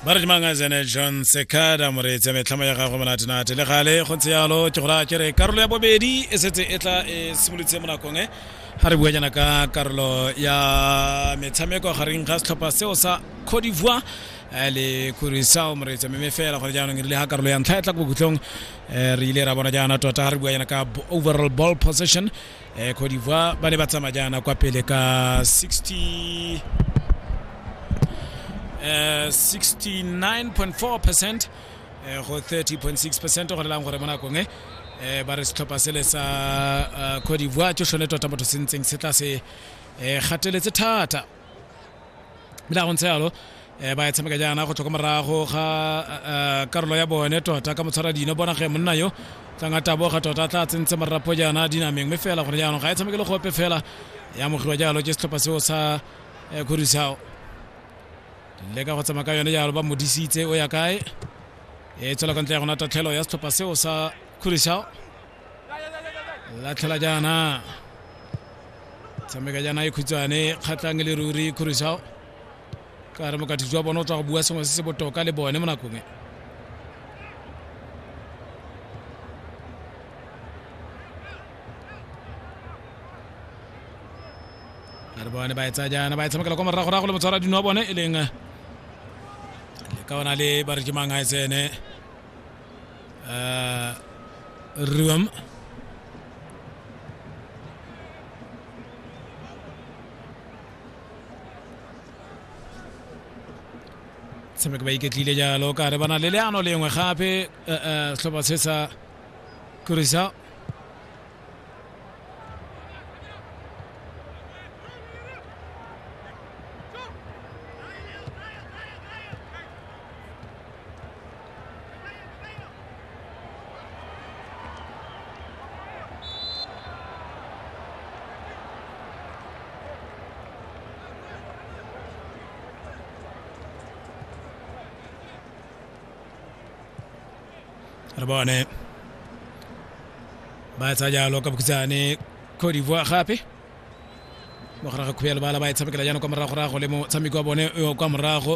ba re dimangazene john sekada moreetsi ya metlhamo ya gagwe monatenate le gale go ntse yalo ke gore a ke re karolo ya bobedi e setse e tla e simolotse mo nakong e ga re buanyana ka karolo ya metshameko gareng ga setlhopha seo sa cote d'ivoire eh, le kurisao moreetsi mme fela gore jaanong e rile ga karolo ya ntlha e tla ko bokhutlong eh, re ile ra bona jaana tota ga re buanyana ka b- overall ball possession eh, Cote d'Ivoire ba ne ba tsamaya jaana kwa pele ka 60 eh, 69.4 percent eh, go 30.6 percent go lelang gore mo nakong e eh, ba re setlhopha sele sa eh, Cote d'Ivoire ke sone tota motho se ntseng se tla se eh, gateletse thata ebile a go ntse yalo um ba e tshameka jaana go tswa ko morago ga eh, karolo ya bone tota ka motshwara dino bona ge monna yo tlanga taboga tota tla tsentse morapo jaana dinameng mme fela gone jaanong ga e tshameke le gope fela ya mogiwa jalo ke setlhopha seo sa eh, khurisao le ka go tsamaya ka yone jalo ba modisitse o ya kae e tswela ka ntle ya gona tatlhelo ya setlhopha seo sa khurisao latlhela jaana tshameka jaana e khutshwane kgatlhang le ruri khurusao ka re mokatho jwa bone o tswa go bua sengwe se se botoka le bone mo nakong e a re bone ba e tsaya jaana ba e tshamekela kwa moragorago le motshwara dino wa bone e leng le ka ona le ba re ke mang a e tsene eh, riwam tshameka ba iketlile jalo ka re bana le leano lengwe gape eh, eh, setlhopha se sa kurisa re bone ba etsa jalo ka bokhutshwane cote d'ivoire gape mo gare ga khuya lebala ba e tshamekela jaanong kwa morago-rago le motshameko wa bone yo kwa morago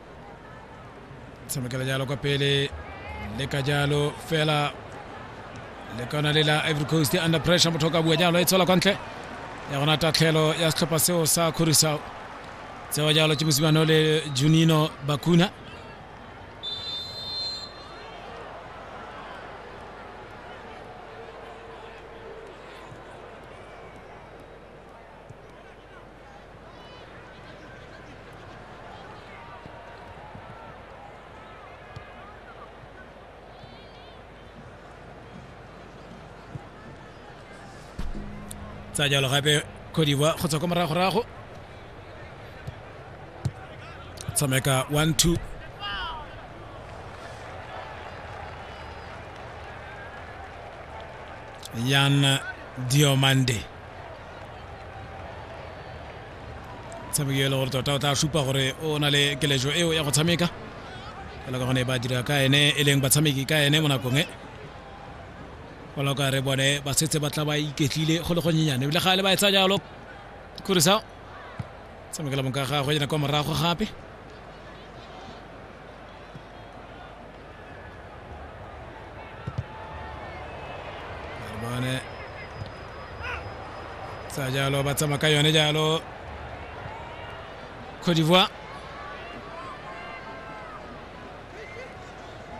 tshamekela jalo kwa pele le ka jalo fela le kona le la ivory coast under pressure motho o ka bua jalo e tswela kwa ntle ya gona tatlhelo ya setlhopha seo sa kgorisao tsewa jalo ke mosimano le junino bakuna tsa jalo gape khodiwa go tswa kwa moragorago tshameka one two yan diomande tshameki e le gore tota o tla supa gore o na le keletso eo ya go tshameka fela ka gone ba dira ka ene e leng batshameki ka ene mo nakong e fela ka re bone ba setse ba tla ba iketlile go le gonyenyane ebile ga le ba etsa jalo khurisa tshamekela bonka gagwe yena kwa morago gape bone sa jalo ba tsamaya ka yone jalo cote d'ivoire